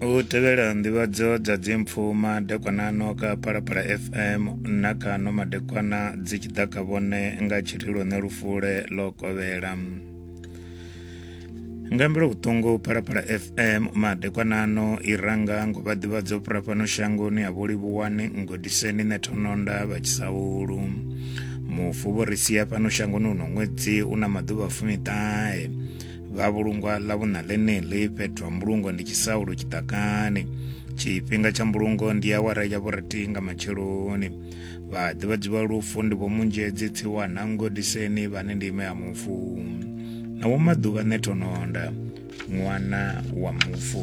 u tevhela nḓivhadzo dza dzimpfu madekwana ano ka phalaphala fm na kha no madekwana dzi tshi ḓa kha vhone nga tshirilo ne lufule ḽo kovhela nga mbilo vhuṱungu phalaphala fm madekwana ano i ranga ngo vha ḓivhadzo fhura fhano shangoni ha vhulivhuwani ngodiseni ne thononda vha tshisaulu mufu vho ri sia fhano shangoni uno ṅwedzi u na maḓuvha fumiṱahe vha vhulungwa ḽa vhuna ḽeneḽi fhethu ha mbulungo ndi tshisaulo tshiḓakani tshifhinga tsha mbulungo ndi awara ya vhurathi nga matsheloni vha ḓivhadzi vha lufu ndi vho munzhedzi tsiwa na ngodiseni vhane ndi ime ya mufu na vho maḓuvha nethononda ṅwana wa mufu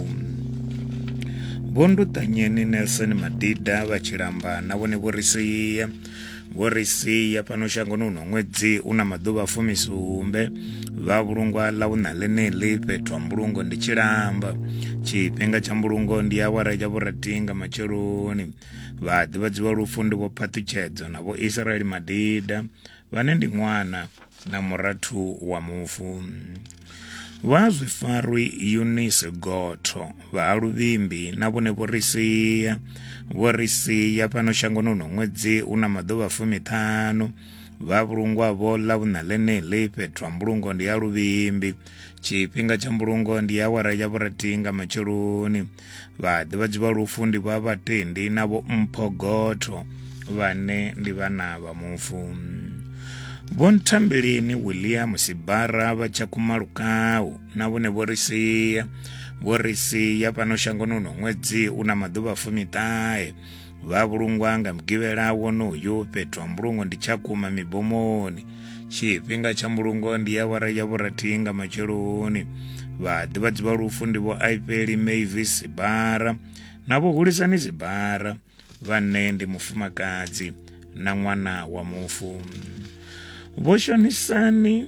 vho ndutanyeni nelson madida vha tshilamba na vhone vho ri sia vho ri sia fhano shangoni uno ṅwedzi u na maḓuvha fumisumbe vha vhulungwa ḽa vhuṋa ḽeneḽi fhethu ha mbulungo ndi tshilamba tshifhinga tsha mbulungo ndi awara ya vhuratinga matsheloni vha ḓivhadziwa lufu ndi vho phaṱhutshedzo na vho israeli madida vhane ndi ṅwana na murathu wa mufu vha zwifarwi eunice gotho vha ha luvhimbi na vhone vho ri sia vho ri sia fhano shangoni uno ṅwedzi u na maḓuvha fumiṱhanu vha vhulungwavho ḽa vhuṋa ḽeneḽi fhethu ha mbulungo ndi ya luvhimbi tshifhinga tsha mbulungo ndi awara ya vhurathi nga matsheloni vhaḓivhadzi vha lufu ndi vha vhatendi na vho mphogotho vhane ndi vhana vha mufu vho nthambeleni william sibara vha tshakhuma lukau na vhone vho ri sia vho ri sia fhano shangoni uno ṅwedzi u na maḓuvha fumiṱahe vha vhulungwa nga mugivhela wonoyu fhethu ha mbulungo ndi tshakhuma mibomoni tshifhinga tsha mbulungo ndi ya wara ya vhurathi nga matsheloni vhaḓivhadzi vha lufu ndi vho aipeli mavi sibara na vho hulisani sibara vhane ndi mufumakadzi na ṅwana wa mufu vho shonisani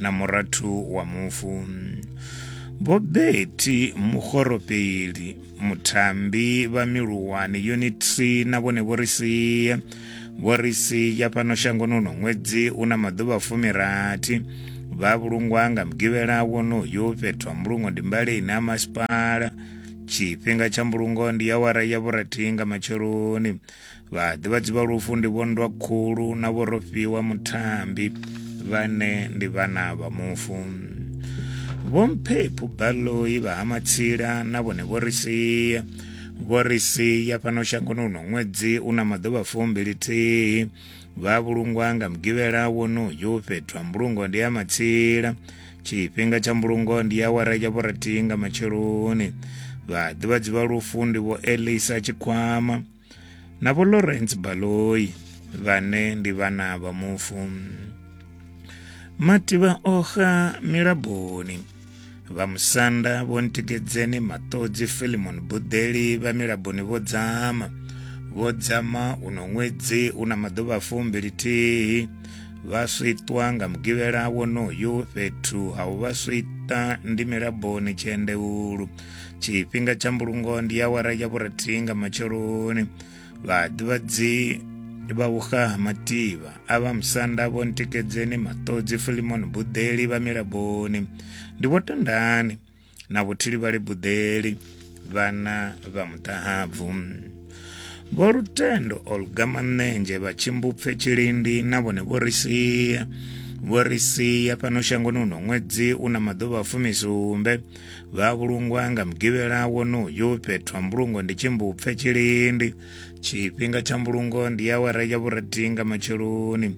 na murathu wa mufu vho beti mugoropeli mutambi vha miluwani unit 3 na vhone vho ri sia vho ri sia fhano shangoni uno ṅwedzi u na maḓuvha fumirathi vha vhulungwa nga mugivhela wonoyo fhethu ha mbulungo ndi mbaleni ha masipala tshifhinga tsha mbulungo ndi awara ya vhurathi nga matsheloni vhaḓivhadzi vha lufu ndi vhondwa khulu na vhorofhiwa muthambi vhane ndi vhana vha mufu vhomphephu baloi vha ha matsila na vhone vho ri sia vho ri sia fhano shangoni uno ṅwedzi u na maḓuvha fumbilithihi vha vhulungwa nga mugivhela wonoyu fhethu ha mbulungo ndi ha matsila tshifhinga tsha mbulungo ndi awara ya vhurathi nga matsheloni vhaḓivhadzi vha lufu ndi vho elisa tshikwama na vho lawrence baloi vhane ndi vhana vha mufu mativha oxa milaboni vha musanda vho ntikedzeni maṱodzi filimon buḓeli vha milaboni vho dzama vho dzama uno ṅwedzi u na maḓuvha fumbili thihi vha switwa nga mugivhela wonoyu fhethu ha u vha swita ndi milaboni tshiendeulu tshifhinga tsha mbulungo ndi awara ya vhurathi nga matsheloni vhaḓivhadzi vha uga mativa a vha musanda vho ntikedzeni maṱodzi filimoni buḓeli vha milaboni ndi vho tandani na vhuthili vha libuḓeli vhana vha muṱahabvu vho lutendo olga manenzhe vha tshimbupfe tshilindi na vhone vho ri sia vho ri sia fhano shangoni uno ṅwedzi u na maḓuvha a fumisumbe vha vhulungwa nga mugivhela wonoyu fhethu ha mbulungo ndi tshimbupfe tshilindi tshifhinga tsha mbulungo ndi ya wara ya vhurathi nga matsheloni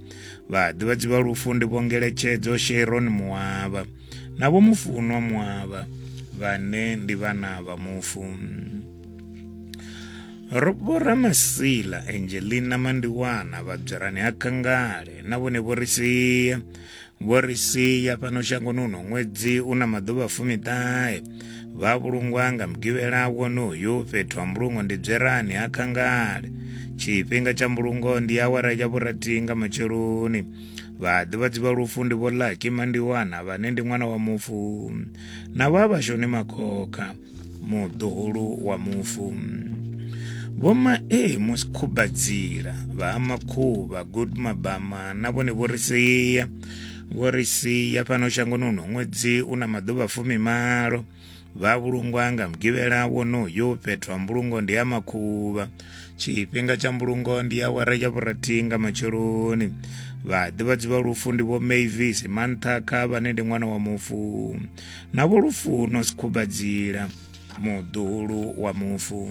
vhaḓivhadzi vha lufu ndi vho ngeletshedzo sheron muwavha na vho mufunwa muavha vhane ndi vhana vha mufu vho ramasila angelina mandiwana vhabzirani ha kangale na vhone vho ri sia vho ri sia fhano shangoni uno ṅwedzi u na maḓuvha fumiṱahe vha vhulungwa nga mugivhela wonoyu fhethu ha mbulungo ndi bzerani ha kangale tshifhinga tsha mbulungo ndi awara ya vhurathi nga matsheloni Vhaḓivhadzi vha lufu ndi Vho Lucky Mandiwana vhane ndi ṅwana wa mufu na vha Vhashoni Makhokha muḓuhulu wa mufu. Vho Mae Musikhumbadzila vha ha Makhuvha Good Mabama na vhone vho ri sia vho ri sia fhano shangoni huno ṅwedzi u na maḓuvha fumimalo. vha vhulungwa nga mugivhela wonoyu fhethu ha mbulungo ndi ha makhuvha tshifhinga tsha mbulungo ndi awara ya vhurathi nga matsheloni vhaḓivhadzi vha lufu ndi vho mavis manthakha vhane ndi ṅwana wa mufu na vho lufuno sikhumbadzila muḓulu wa mufu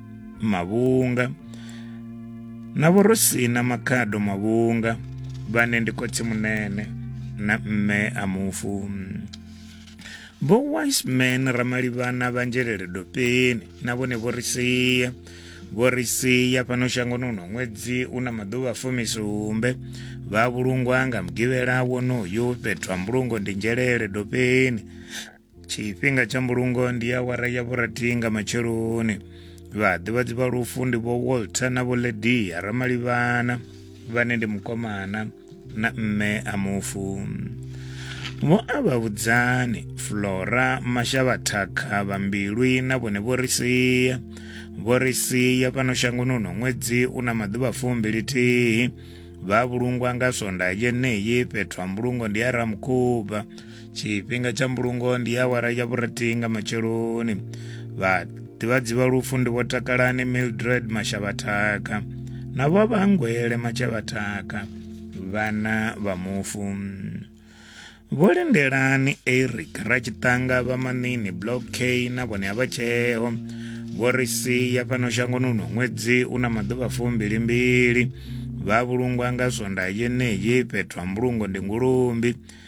Mavhunga na vho ro sina makhado Mavhunga vhane ndi khotsi munene na mme a mufu vho wiseman ramalivhana vha nzhelele dopeni na vhone vho ri sia vho ri sia fhano shangoni uno ṅwedzi u na maḓuvha fumisumbe vha vhulungwa nga mugivhela wonoyu fhethu ha mbulungo ndi nzhelele dopeni tshifhinga tsha mbulungo ndi awara ya vhurathi nga matsheloni vhaḓivhadzi vha lufu ndi vho walter na vho ledia ramalivhana vhane ndi mukomana na mme a mufu vho a vha vhudzani flora mashavhathakha vha mbilwi na vhone vho ri sia vho ri sia fhano shangoni uno ṅwedzi u na maḓuvha fumbili thihi vha vhulungwa nga swonda yeneyi fhethu ha mbulungo ndi a ramukhuba tshifhinga tsha mbulungo ndi awara ya vhurati nga matsheloni vhaḓivhadzi vha lufu ndi vho takalani mildred mashavhathaka na vho vhangwele mashavhathaka vhana vha mufu vho lindelani eric ratshitanga vha manini block k na vhone a vha tsheo vho ri sia fhano shangoni uno ṅwedzi u na maḓuvha fumbili mbili vha vhulungwa nga swonda yeneyi fhethu ha mbulungo ndi ngulumbi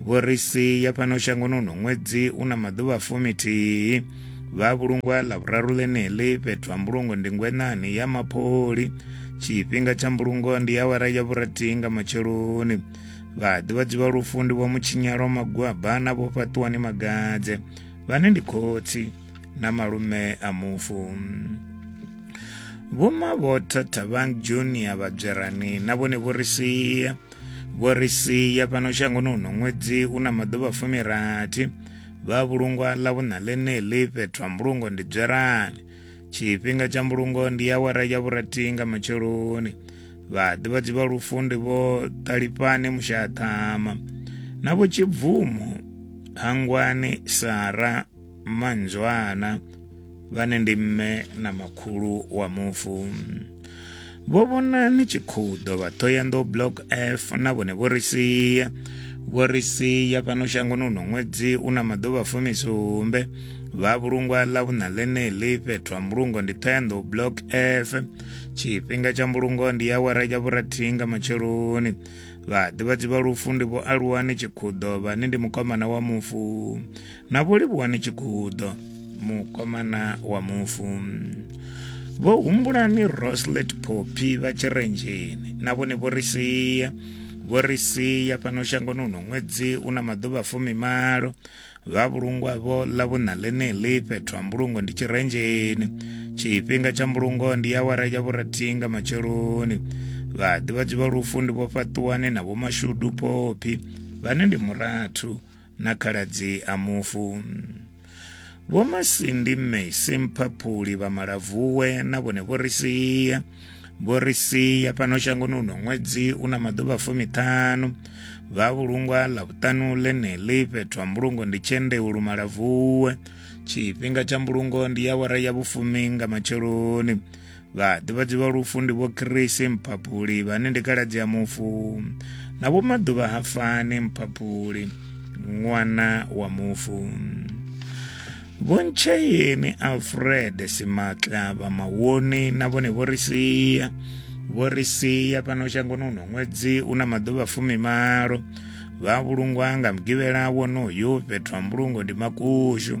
vho ri si ya fhano shangoni uno ṅwedzi u na maḓuvha fumithihi vha vhulungwa ḽa vhuraru ḽeneḽi fhethu ha mbulungo ndi ngwenani ya mapholi tshifhinga tsha mbulungo ndi awara ya vhurathi nga matsheloni vhaḓivhadzi vha lufu ndi vho mutshinyalo magwaba na vho fhaṱuwani magadze vhane ndi khotsi na malume a mufu vhoma vho thathavang junior vhadzwerani na vhone vho ri sia vho ri sia fhano shangoni uno ṅwedzi u na maḓuvha fumirathi vha vhulungwa ḽa vhuṋa ḽeneḽi fhethu ha mbulungo ndi dzwerani tshifhinga tsha mbulungo ndi awara ya vhurathi nga matsheloni vhaḓivhadzi vha lufu ndi vho ṱalifhane mushaṱhama na vho tshibvumo hangwani sara manzwana vhane ndi mme na makhulu wa mufu vho vhona ni tshi khou ḓo vha ṱhoyanḓou block f na vhone vho ri sia vho ri sia fhano shangoni uno ṅwedzi u na maḓuvha fumisumbe vha vhulungwa ḽa vhuṋa ḽeneḽi fhethu ha mbulungo ndi ṱhoyanḓou block f tshifhinga tsha mbulungo ndi awara ya vhurathihi nga matsheloni vhaḓivhadzi vha lufu ndi vho aluwani tshikhuḓo vhane ndi mukomana wa mufu na vho livhuwani tshigudo mukomana wa mufu vho humbulani roslet popi vha tshirenzheni na vhone vho ri sia vho ri sia fhano shangoni uno ṅwedzi u na maḓuvha fumimalo vha vhulungwa vho ḽa vhuṋa ḽeneḽi fhethu ha mbulungo ndi tshirenzheni tshifhinga tsha mbulungo ndi awara ya vhurathi nga matsheloni vhaḓivhadzi vha lufu ndi vho fhaṱuwani na vhomashudu popi vhane ndi murathu na khaladzi a mufu vho masindi mme simphaphuli vha malavuwe na vhone vho ri sia vho ri sia fhano shangoni uno ṅwedzi u na maḓuvha fumiṱhanu vha vhulungwa ḽa vhuṱanu ḽeneḽi fhethu ha mbulungo ndi tshendeu lumalavuwe tshifhinga tsha mbulungo ndi ya wara ya vhufumi nga matsheloni Vhaḓivhadzi vha lufu ndi vho Krisi mphaphuli vhane ndi kaladzi ya mufu na vho maḓuvha ha fani mphaphuli ṅwana wa mufu vho ntsheyeni alfred simatla vha mawoni na vhone vho ri sia vho ri sia fhano shangoni uno ṅwedzi u na maḓuvha fumimalo vha vhulungwa nga mugivhela wonoyu fhethu ha mbulungo ndi makushu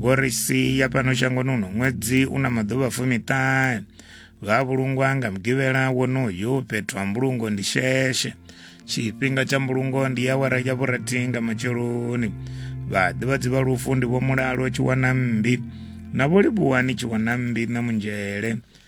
vho ri sia fhano shangoni uno ṅwedzi u na maḓuvha fumiṱahe vha vhulungwa nga mugivhela wonoyu fhethu ha mbulungo ndi sheshe tshifhinga tsha mbulungo ndi ya wara ya vhurathi nga matsheloni vhaḓivhadzi vha lufu ndi vho mulalo tshi wana mmbi na vho livhuwani tshi wana mmbi na munzhele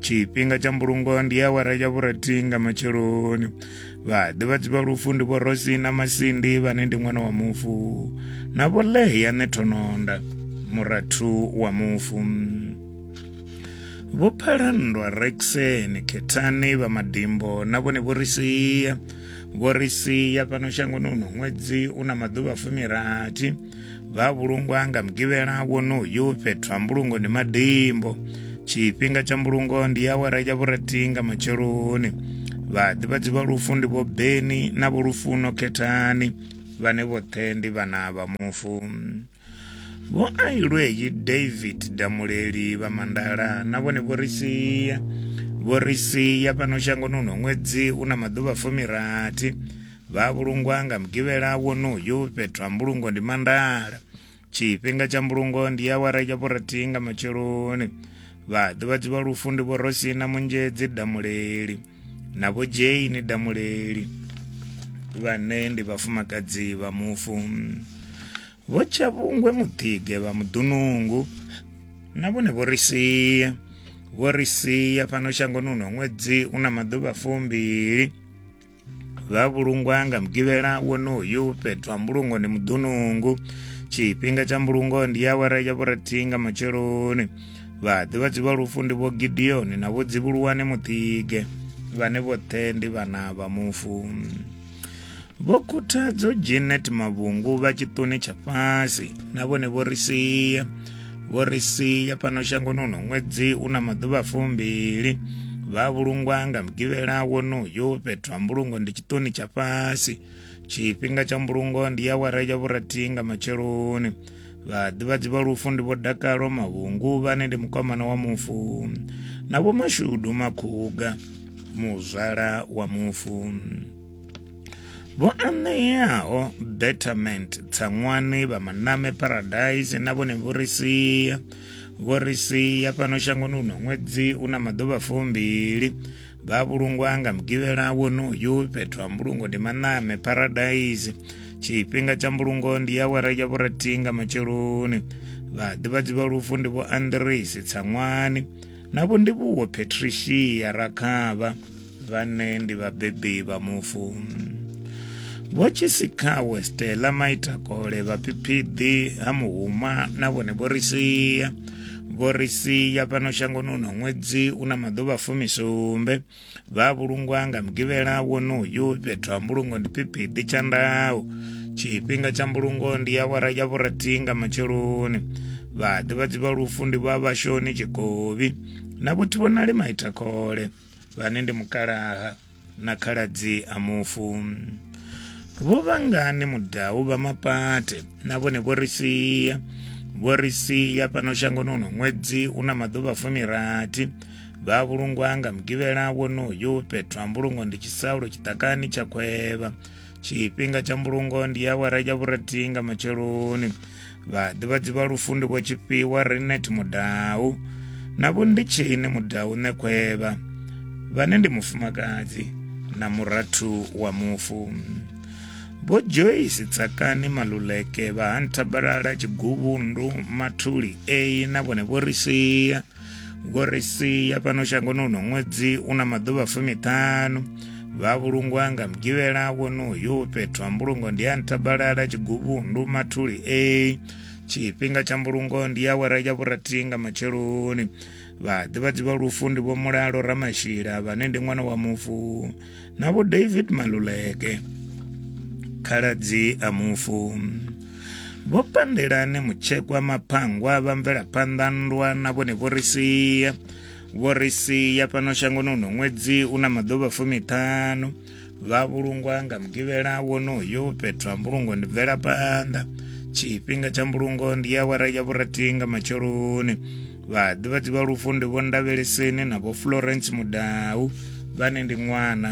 tshifhinga tsha mbulungo ndi awara ya vhurathi nga matsheloni vhaḓivhadzi vha lufu ndi vho rosi na masindi vhane ndi ṅwana wa mufu na vho leya ne thononda murathu wa mufu vho phalandwa rexeni khethani vha madimbo na vhone vho ri sia vho ri sia fhano shangoni uno ṅwedzi u na maḓuvha fumirathi vha vhulungwa nga mugivhela wonoyu fhethu ha mbulungo ndi madimbo tshifhinga tsha mbulungo ndi awara ya vhurathi nga matsheloni vhaḓivhadzi vha lufu ndi vho beni na vho lufuno khethani vhane vhoṱhe ndi vhana vha mufu vho ailweyi david damuleli vha mandala na vhone vho ri sia vho ri sia fhano shangoni uno ṅwedzi u na maḓuvha fumirathi Vha vhulungwa nga mugivhela wonoyu fhethu ha mbulungo ndi mandala tshifhinga tsha mbulungo ndi awara ya vhurathihi nga matsheloni vhaḓivhadzi vha lufu ndi vhorosina munzhedzi damuleli na vho jane damuleli vhane ndi vhafumakadzi vha mufu vho tshavhungwe muḓige vha muḓunungu na vhone vho ri sia vho ri sia fhano shangoni uno ṅwedzi una maḓuvha fumbili vha vhulungwa nga mugivhela wonoyu fhethu ha mbulungo ndi muḓunungu tshifhinga tsha mbulungo ndi awara ya vhurathi nga matsheloni vhaḓivhadzi vha lufu ndi vho gideoni na vho dzivhuluwane muṱige vhane vhoṱhe ndi vhana vha mufu vho khuthadzo janet mavhungu vha tshiṱuni tsha fhasi na vhone vho ri sia vho ri sia fhano shangoni uno ṅwedzi u na maḓuvha fumbili vha vhulungwa nga mugivhela wonoyo fhethu ha mbulungo ndi tshiṱoni tsha fhasi tshifhinga tsha mbulungo ndi ya wara ya vhurathi nga matsheloni vhaḓivhadzi vha lufu ndi vho dakalo mavhungu vhane ndi mukwamana wa mufu na vho mashudu makhuga muzwala wa mufu vho aṋeaho betterment tsaṅwani vha maname paradise na vhone vho ri sia vho ri sia fhano shangoni uno ṅwedzi u na maḓuvha fumbili vha vhulungwa nga mugivhela wonoyu fhethu ha mbulungo ndi maname paradise tshifhinga tsha mbulungo ndi ya wara ya vhurathi nga matsheloni vhaḓivhadzi vha lufu ndi vho andresi tsaṅwani na vho ndivhuwo patricia rakhavha vhane ndi vhabebi vha mufu vho tshisikawe stela maitakole vhaphiphidi ha muhuma na vhone vho ri sia vho ri sia fhano shangoni uno ṅwedzi u na maḓuvha fumisumbe vha vhulungwa nga mugivhela wonoyu fhethu ha mbulungo ndi phiphidi tsha ndau tshifhinga tsha mbulungo ndi awara ya vhurathi nga matsheloni vhaḓivhadzi vha lufu ndi vha vhashoni tshikovi na vhothiwonali maitakhole vhane ndi mukalaha na khaladzi a mufu vho vhangani mudau vha mapate na vhone vho ri sia vho ri sia fhano shangoni uno ṅwedzi u na maḓuvha fumirathi vha vhulungwa nga mugivhela wonoyo fhethu ha mbulungo ndi tshisaulo tshiṱakani tsha khwevha tshifhinga tsha mbulungo ndi awara ya vhurathi nga matsheloni vhaḓivhadzi vha lufu ndi vho tshifhiwa renet mudau na vho ndi tshini mudau ṋekhwevha vhane ndi mufumakadzi na murathu wa mufu vho joyce tsakani maluleke vha ha nthabalala tshiguvhundu mathuli eyi na vhone vho ri sia ngo ri sia fhano shangoni uno ṅwedzi u na maḓuvha fumiṱhanu vha vhulungwa nga mugivhela wonoyu fhethu ha mbulungo ndi ya nthabalala tshiguvhundu mathuli a tshifhinga tsha mbulungo ndi ya wera ya vhurathi nga matsheloni vhaḓivhadzi vha lufu ndi vho mulalo ramashila vhane ndi ṅwana wa mufu na vho david maluleke khaladzi a mufu vho pandelane mutshekwa maphangwa vha mvelaphanḓa nndwa na vhone vho ri sia vho ri sia fhano shangoni uno ṅwedzi u na maḓuvha fumiṱhanu vha vhulungwa nga mugivhela wonoyo fhethu ha mbulungo ndi bvelaphanḓa tshifhinga tsha mbulungo ndi awara ya vhurathi nga matsheloni vhaḓivhadzi vha lufu ndi vho ndavheleseni na vho florence mudau vhane ndi ṅwana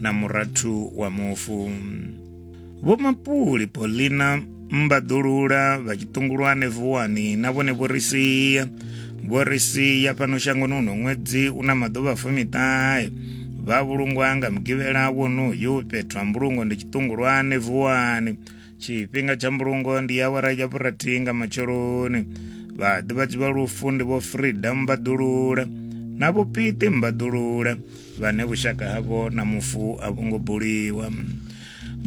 na murathu wa mufu vho mapuli polina mbaḓulula vha tshiṱungulwane vuwani na vhone vho ri sia vho ri sia fhano shangoni uno ṅwedzi u na maḓuvha fumiṱahe vha vhulungwa nga mugivhela wonoyu fhethu ha mbulungo ndi tshiṱungulwane vuwani tshifhinga tsha mbulungo ndi awara ya vhurathi nga matsheloni vhaḓivhadzi vha lufu ndi vho freedom mbaḓulula na vhupiti mbaḓulula vhane vhushaka havho na mufu a vho ngo buliwa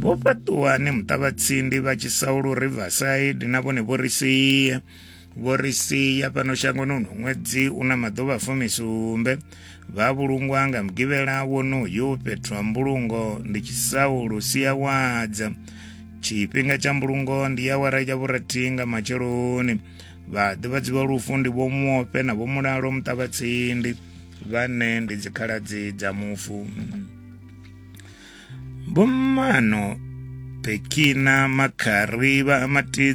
vho fhaṱuwani muṱavhatsindi vha tshisaulu riverside na vhone vho ri sia vho ri sia fhano shangoni uno ṅwedzi u na maḓuvha fumisumbe vha vhulungwa nga mugivhela wonoyu fhethu ha mbulungo ndi tshisaulu siawadza tshifhinga tsha mbulungo ndi ya wara ya vhurathi nga matsheloni vhaḓivhadzi vha lufu ndi vho muope na vho mulalo muṱavhatsindi vhane ndi dzikhaladzi dza mufu vhommano pekina makhari vha matidzi